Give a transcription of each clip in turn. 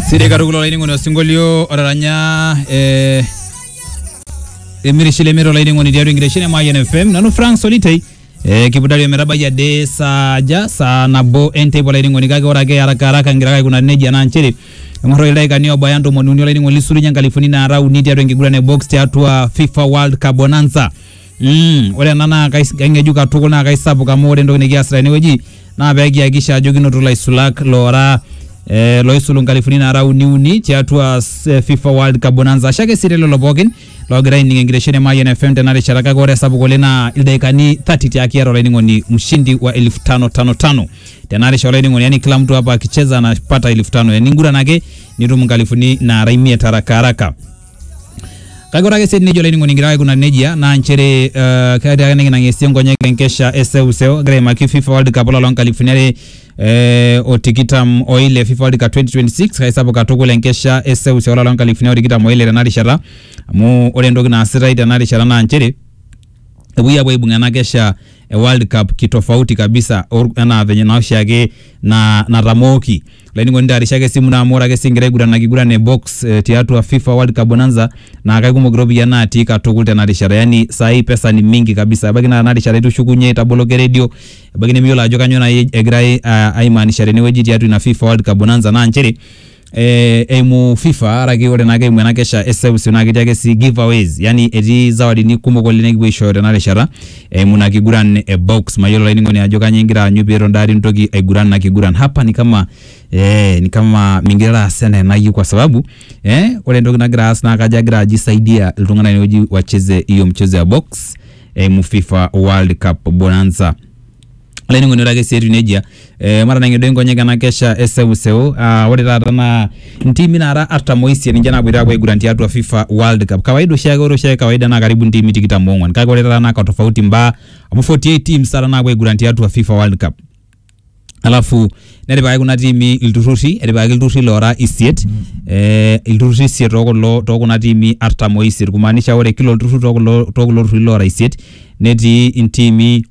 Siri katukul olainining'oni osinkolio otaranya eh, emirishile miro olainining'oni tiatua enkitesheni e Mayian FM nanu Frank Solitei eh, kipudari ometabaiki ade saa aja saa nabo enteipa olainining'oni kake ore ake haraka haraka ngira ake aikunari nejia naa nchere eng'orroki ildaikani obaya ntomoni uni olainining'oni lisulunye nkalifuni naara uni tiatua enkiguran e box tiatua FIFA World Cup Bonanza Mm, ore ena naa kais- kaing'ejuk katukul naa kaisapuk amu ore entoki nikiasita tenewueji naa pee kihakikisha ajo kinoto ilaisulak loora eh, loisulu nkalifuni naara uni uni tiatua s- eh, FIFA World Cup Bonanza. Ashe ake sii telelo pookin loogira aining enkitesheni e Mayian FM tena rishata kake ore esapuk oleng naa ildaikani 30 tiaki iata olainining'oni mshindi wa elfu tano tano tano tena rishata olainining'oni yani kila mtu hapa akicheza anapata elfu tano yani inguran ake nitum nkalifuni naara imiet haraka haraka. kake ore ake sii nejo olainining'oni kigira aikuna nejia naa nchere eh, ketii ake nikinang'esie nkonyek enkesha e seuseu egira aimaki FIFA World Cup olapa loonkalifuni are eh, o tikitam oile FIFA World Cup 2026 kaisapuk katukul enkesha e seuseu olapa loonkalifuni are o tikitam oile tena rishata amu ore entoki naasitai tena rishata naa nchere epuoi apuo aibung ena kesha e World Cup kitofauti kabisa or- enaa venye naa oshiake na, natamooki lainining'oni taarishaki esimu naa amu ore ake sii ingira aiguran ina kiguran e box eh, tiatua FIFA World Cup Bonanza naa kaikumok iropiyiani natii katukul tena rishata yani saai pesa ni mingi kabisa ebaiki naa tena rishata itushukunye itaboloki eredio ebaiki nemiyiolo ajo kanyoo nai egirai ah, aimaanisha tenewueji tiatua ina FIFA World Cup Bonanza naa nchere eh, eimu fifa araki ore naake eimu ena kesha e seuseu naa ketii ake sii giveaways yani etii zawadini kumok oleng nikipuo aishooyo tena rishata eimu ina kiguran e box mayiolo olainining'oni ajo kanyioo ingira aanyu peeton daa nintoki aiguran ina kiguran hapa ni kama eh, ni kama mingira aas enaa enayieu kwa sababu eh, ore entoki nagira aas naa kajo agira aji saidia iltung'anak inewueji wacheze hiyo mchezo ya box eimu fifa world cup bonanza olainining'oni ore ake sii etiu nejia eh, matanang'ie duo nkonyek ena kesha e seuseu ah, ore taata naa ntiimi naara artam oisiet ninche naapoito aapuo aiguran tiatua FIFA World Cup kawaida oshiake ore oshiake kawaida naa karibu ntiimi tikitam oong'wan kake ore taata naa katofauti imbaa amu 48 teams taata naapuo aiguran tiatua FIFA World Cup alafu netipikaki kuna tiimi ilturrurri etipikaki ilturrurri loora isiet eh, ilturrurri isiet tookulo tookuna tiimi artam oisiet kumaanisha ore kila olturrur tookulo tookulo turrurri loora isiet netii intiimi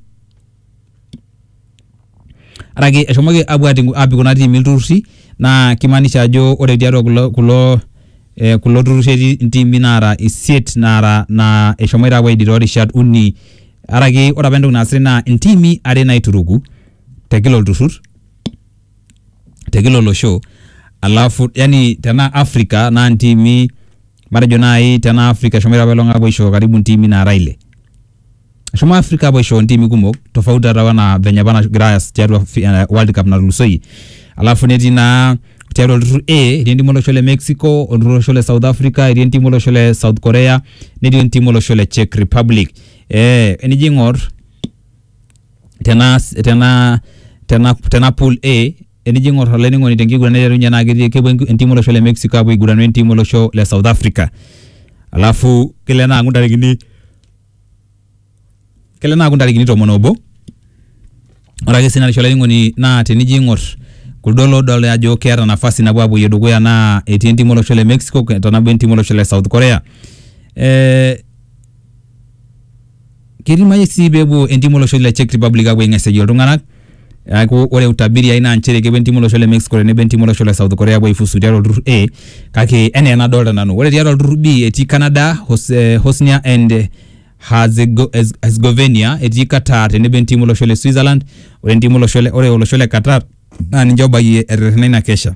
ore ake eshomoki apuo atii apik kuna tiimi ilturruri naa kimaanisha ajo ore tiatua kulo kulo eh kulo turruri etii intiimi naara isiet naara naa eshomoita apuo aidie torishat uni araki ore apa entoki naasitae naa intiimi are naituruku te kila olturrur te kila olosho alafu yani tenaa Africa naa intiimi matejo naaji tenaa Africa eshomoito apaelong apuo aisho karibu intiimi naara ile. Eshomo Afrika apuo aisho ntimi kumok tofauti taata wana venye apa nagira aas tiatua fi- eh, World Cup natulusoyie. Alafu netii naa tiatua olturrur A etii entimu olosho le Mexico, olturrur olosho le South Africa, etii entimu olosho le South Korea, netii entimu olosho le Czech Republic. Eh, enijo aing'or tena tena tena tena pool A enijo ing'or olainining'oni tenkiguran naiterunye naa ketii kepuo enki- entimu olosho le Mexico apuo aiguranu entimu olosho le South Africa. Alafu kelo ena aaku ntarikini kele naaku ntarikini tomon obo ore ake sii narisho olainining'oni naa tenijo aing'or kuldo loodolta ajo keeta nafasi napuo apuoyie dukuya naa etii entim olosho le Mexico tenebo entim olosho le South Korea eh, keidimayu sii peepuo entim olosho le Czech Republic apuo aing'asieyie iltung'anak Neaku ore utabiri ai naa nchere kepuo entiim olosho le Mexico tenebo entiim olosho le South Korea apuo aifuzu tiatua olturrur A kake enaa enadolta nanu. Ore tiatua olturrur B etii Canada, Hosnia and Herzegovenia, etii Qatar tenebo entiim olosho le Switzerland, ore entiim olosho le, ore olosho le Qatar naa ninche obayie eterrena ina kesha.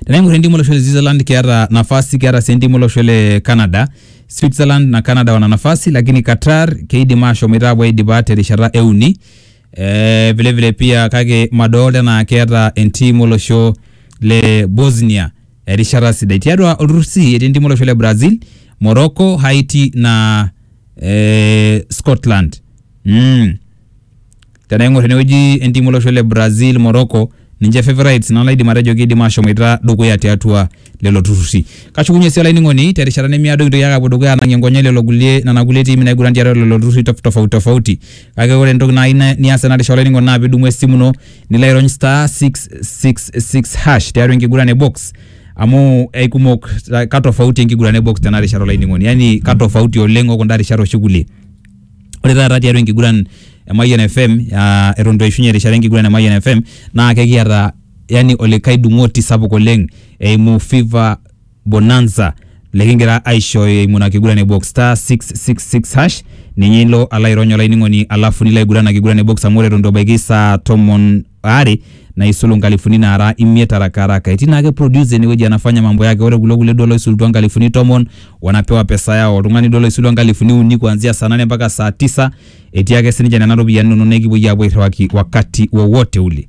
Tenaing'or entim olosho le Switzerland keata nafasi keata sii entim olosho le Canada. Switzerland na Canada wana nafasi lakini Qatar keidim ashomoita apuo aidipa terishata e uni. Eh, vile vile pia kake madolta enaa keata entim olosho le Bosnia erishata sidai. Tiatua olturrur C etii entim olosho le Brazil, Morocco, Haiti na eh, Scotland. Mm. tenaing'or tenewueji entim olosho le Brazil, Morocco ninche favourites naa laidim atejo kiidim ashomoita dukuya tiatua lelo turrurri. Kashukunye sii olainining'oni terishata nemiado kintoki ake apuo dukuya anang'ie nkonyek lelo kulie nena kulie tiimi naiguran tiatua lelo turrurri tof- tofauti tofauti. Kake ore entoki naai na- nias tena rishata olainining'oni naa pidumu esimu ino nilo airony star six six six hash tiatua enkiguran e box amu aikumok ka tofauti enkiguran e box tena rishata olainining'oni yani ka tofauti oleng o kunda rishat oshi kulie ore taata tiatua enkiguran e Mayian FM aa eton itu eishunye erishata enkiguran e Mayian FM naa kekiata yani olikae dung'oti sapuk oleng eimu Fifa Bonanza likingira aishooyo eimu ina kiguran e box star 666 hash ninye ilo alo airony olainining'oni alafu nilo aiguran ina kiguran e box amu ore eton itu ebaiki saa tomon are naisulu nkalifuni naara imiet araka araka etii naake producer enewueji anafanya mambo yake ore kulo kulie duo loisulutua nkalifuni tomon wanapewa pesa yao oltung'ani duo loisulua nkalifuni uni kuanzia saa nane mpaka saa tisa etii ake sininche nena ropiyiani inonok nekipuoi aapuo airriwaki wakati wowote ule